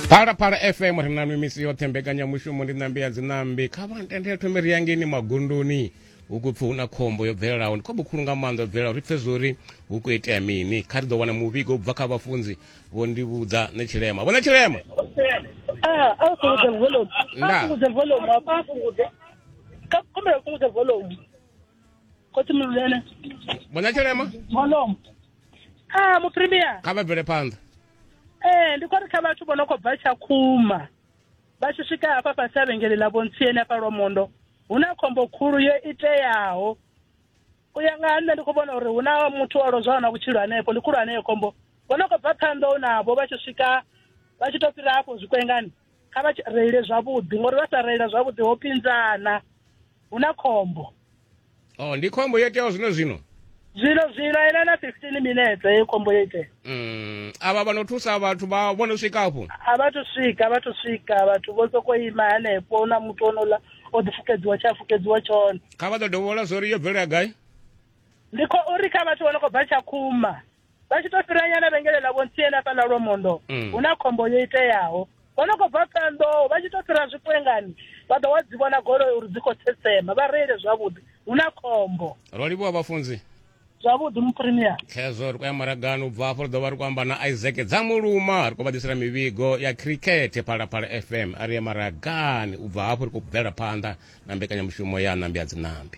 phalaphala fm ri na mimisi yoṱhe mbekanyamushumo ndi ṋambi ya dziṋambi kha vha ntendele thome ri yangeni magunduni hu khou pfi hu na khombo yo bvelelaho ndi khombo khulu nga maanḓa yo bvelelaho ri pfe zwori hu khou itea mini kha ri ḓo wana muvhigo u bva kha vhafunzi vho ndi vhudza ne tshilema vhona tshilema ah, a fhungudze volume a fhungudze volume a fhungudze ka kumbela fhungudze volume khotsi mululele mona tshilema molomo a muprimier kha vha bvele phanḓa ee ndi khou ri kha vhathu vho no khou bva tshakhuma vha tshi swika hafha fhasi a vhengele ḽa vhontsieni hafha lwamondo hu na khombo khulu yo iteaho u ya nga ha nṋe ndi khou vhona uri hu na muthu o lozwaho na vhutshilo hanefho ndi khulu haneyo khombo vho no khou bva phanḓa u navho vha tshi swika vha tshi to fhira hafho zwikwengani kha vha tsh- reile zwavhuḓi ngori vha sa reila zwavhuḓi ho pinzana hu na khombo oh ndi khombo yo iteaho zwino zwino zwino zwino ena na 15 minetse heyo khombo yo itea mm. avha vha no thusa vhathu vha vho no swika afho a vha thu swika a vha thu swika vhathu vho sokou ima hanefho hu na muthu onola o ḓifukedziwa tshe a fukedziwa tshone kha vha ḓo dovhola zwo ri yo bvelela gai ndi khou uri kha vhathu vho no khou bva tshakhuma vha tshi to fhira nyana vhengele ḽa vhontsiene afha ḽa lwomondo Mm. hu na khombo yo iteaho vho no khou bva ṱanḓoho vha tshi to fhira zwikwengani vha ḓo wa dzi vhona goloi uri dzi khou tsetsema vha reile zwavhuḓi hu na khombo ro livhuwa vhafunzi zwavhuḓi mupremier khezwo ri khou ya maragani u bva afho ri ḓo vha ri khou amba na isaac dzamuluma ri khou vha ḓisela mivhigo ya khirikhethe phalaphala fm a ri ye maragani u bva hafho ri khou bvela phanḓa na mbekanyamushumo ya nambi ya dzinambi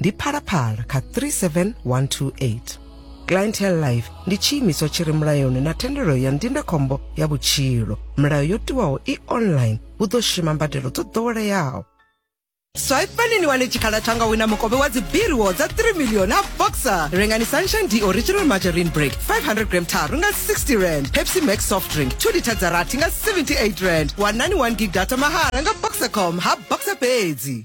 ndi phalaphala kha 37128 clientele life ndi tshiimiswa tshi re mulayoni na thendelo ya ndindakhombo ya vhutshilo milayo yo tiwaho i online hu ḓo shuma mbadelo dzo ḓoweleaho swaipani ni wane tshikhala tsha nga wina mukovhe wa dzibiriwo dza 3 milioni a boxer rengani sunshine d original margarine break 500 gram tharu nga 60 rand pepsi max soft drink 2 lita dza rathi nga 78 rand wanani 1 gig data mahala nga boxercom ha boxer fhedzi